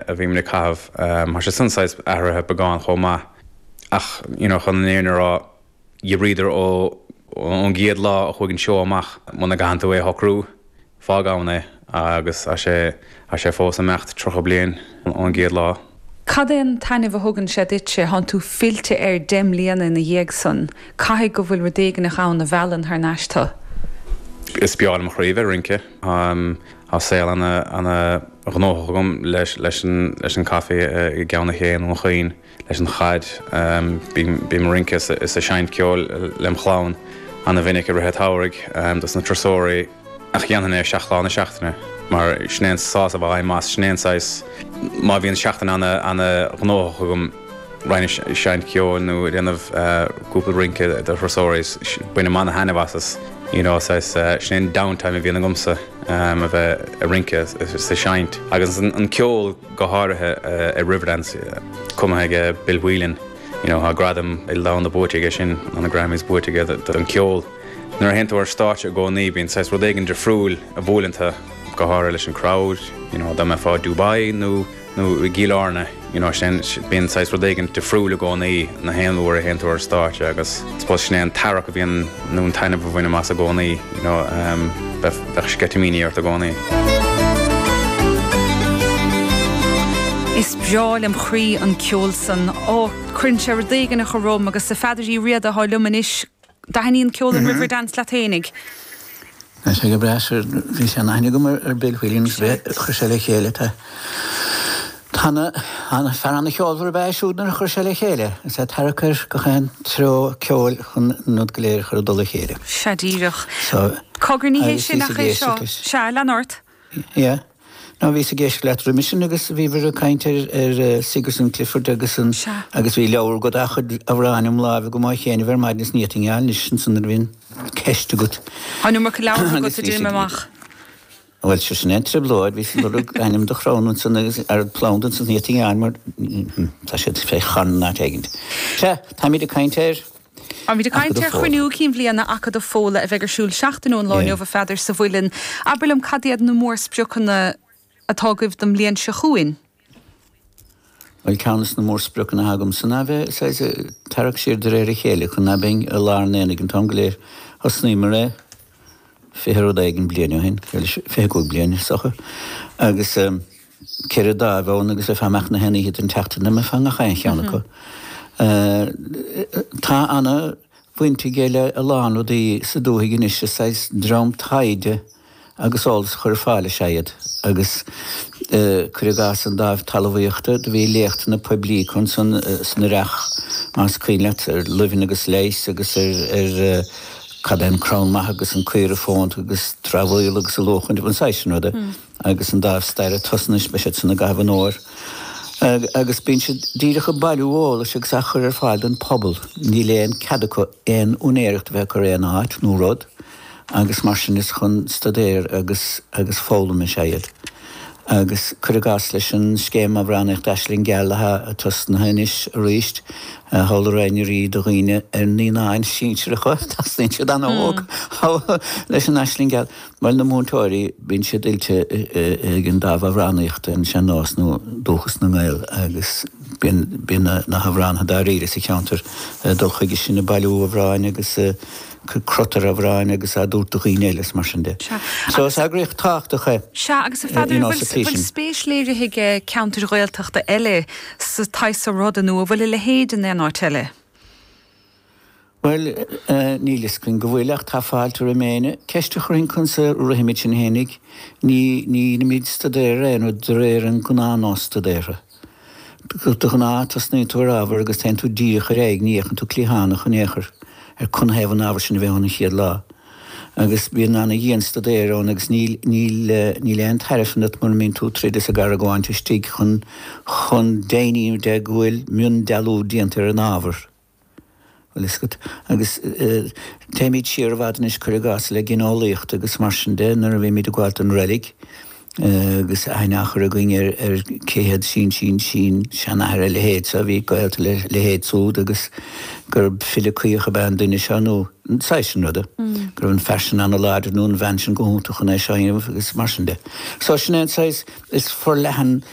a bhí muid ag caitheamh. Tá sé saghas athraithe beagán chomh maith ach you know chun an fhírinne a rá Riverdance ó ón gcéad lá a chuaigh an seó amach muna gcaitheann tú é a shocrú fágann é agus tá sé tá sé fós ag imeacht tríocha bliain ón gcéad lá. Cad é an taitneamh a thugann sé duit sé? Thá tú fillte air deich mbliana ina dhiaidh san. Caithfidh go bhfuil rud éigneach ann a mheallann thar n-ais tu? Is breá lem chroí a bheith ag rince. Tá saol ana ana ghnóthach agam leis leis an leis an caife i gCeann Sléibhe i nDún Chaoin leis an chaid. Bím bím ag rince is ag seinnt ceoil lem chlann ana mhinic i rith a tSamhraidh dos na turasóirí ach dhéanfainn é seacht lá na seachtaine mar sin é an sásamh a bhainim as sin é an saghas má bhíonn seachtain ana ana ghnóthach agam. roinnt seinnt ceoil nó déanamh cúpla rince do thurasóirí. Bainim an-thaitneamh as as you know saghas sin é an downtime a bhíonn agamsa a bheith ag rince is ag seinnt. Agus an ceol go háirithe i Riverdance cumtha ag Bill Whelan you know tá gradam idirnáisiúnta buaite aige sin nó na Grammys buaite aige don cheol. Nuair a théann tú ar stáitse i gcónaí bíonn saghas rud éigin difriúil a bhuaileann tu go háirithe leis an crowd you know dá mbeifeá i Dubai nó nó i gCill Airne, you know, sin, bíonn saghas rud éigin difriúil i gcónaí gach aon uair a théann tú ar stáitse agus I suppose sin é an tarrac a bhíonn, nó an taitneamh a bhainim as i gcónaí, you know, ehm, bheith, bheadh sceitimíní ort i gcónaí. Is breá lem chroí an ceol san. Ó, cuireann sé rud éigin a chur romham agus is é Peadar Ó Riada atá liom anois, dtaithníonn ceol an Riverdance leat fhéinig? Bhí sé go breá sure, bhí sé an aithne agam ar ar Bill Whelan bhí chuir sé le chéile tá Tá na an fear ana cheolmhar ab ea siúd nuair a chuir sé le chéile is é tarrac ar gach aon treo ceoil chun an rud go léir a chur i dtoll a chéile. Sea díreach. So Cogar ní hé agus sin bhí sa ach é gcéist seo. acu. Sea, lean ort. Yeah. Ná bhíos ag caint leat roimis sin agus bhíobhair ag caint ar ar Sigerson Clifford agus an Sea. agus bhí leabhar dá chuid amhrán im láimh an mhaidin chéanna ar maidin is ní féidir liom anois sin san nuair a bhíonn ceist agat. An bhfuil mórán leabhartha agat a d'imigh amach? Bhuel seo sin é an trioblóid, bhíos ag lorg ainm do chrann ansan agus ar phlanda ansan is níot i ngeall mar tá siad fé charn in áit éigin. Sea, táimid ag caint ar. Táimid ag caint ar Chruinniú Cinn Bhliana Acadamh Fódhla a bheidh ar siúl seachtain ón lá inniu a Pheadair sa Mhuileann? Abair liom cad iad na mór spriocanna atá agaibh don mbliain seo chugainn? Bhuel ceann de na mór spriocanna atá agamsa ná a bheith saghas ag tarrac siar de réir a chéile chun ná beinn i lár an aonaigh an t-am go léir. Thosnaíomar é fiche rud éigin bliain ó shin, bhuel fiche cúig bliain is docha, agus. 4 dáimh ann agus ar feadh mbeadh na hoícheanta den tseachtain ná féadfá a bheith i ngach aon cheann acu. Tá ana bhaint aige le a lán rudaí sa dúthaigh anois, is saghas dream taighde agus eolas a chur ar fáil is ea iad agus cuir i gcás an dáimh talamhaíochta do bhí léachtanna poiblí acu ansan san earrach más cuimhin leat ar luibheanna agus leighis agus ar cad é an cré mhaith agus an cré fónta agus treabhadh agus a luach an saghas sin ruda. agus an dáimh staire tosnaithe anois, beidh siad san i gcaitheamh an fhomhair agus bíonn siad díreach ag bailiú eolais agus á chur ar fáil don phobal. Níl aon cead acu aon úinéireacht a bheith ag cur aon áit nó rud agus mar sin is chun staidéir agus agus foghlaim is ea iad. Agus cuir i gcás leis an scéim amhránaíochta Aisling Gheal atá tosnaithe anois arís, i scoileanna arís do dhaoine ar naíonáin sinsearacha, tosnaíonn siad an-óg leis an Aisling Gheal. Mar na múinteoirí, bíonn siad oilte ag an dáimh amhránaíochta, an sean-nós nó dúchas na nGael, agus bíonn na hamhránaithe dáiríre sa cheantar ag dul chucu san ag bailiú amhráin agus ag cur crot ar amhráin agus á dtabhairt do dhaoine eile is mar sin de. So is eagraíocht thábhachtach é. Sea, agus a Pheadair, bhfuil spéis léirithe ag ceantair Ghaeltachta eile sa tsaghas seo ruda nó an bhfuil a leithéid in aon áit eile? Bhuel, níl fhios againn go bhfuil ach tá fáilte roimh éinne. Ceist a chuirfinn conas a rithimid sin féin ag, ní, nílimid ag staidéar é nó de réir an gnáth nós staidéara. De ghnáth tosnaíonn tú ar ábhar agus téann tú díreach ar aghaidh, ní fhéachann tú cliathánach in aon chor ar canathaobh an t-ábhar sin a bheith ann an chéad lá. Agus bíonn an-dian staidéar ann agus níl, níl, níl aon tairbhe san rud mura mbíonn tú ag troid is ag argóint istigh chun, chun deimhniú go bhfuil mion dealú déanta ar an ábhar. Agus téimid siar i bhfad anois, cuir i gcás, le gineolaíocht agus mar sin de, nuair a bhímid ag gabháil don reilig agus aithne á chur againn ar cé hé sin-sin-sin-seanathair a leithéid seo a bhí gaolta le leithéid súd agus gurb file caoch ab ea an duine seo nó an saghas sin ruda, go raibh an fear sin an-láidir nó an bhean sin go hiontach chun é seo a dhéanamh agus mar sin de. So sin é an saghas is forleathan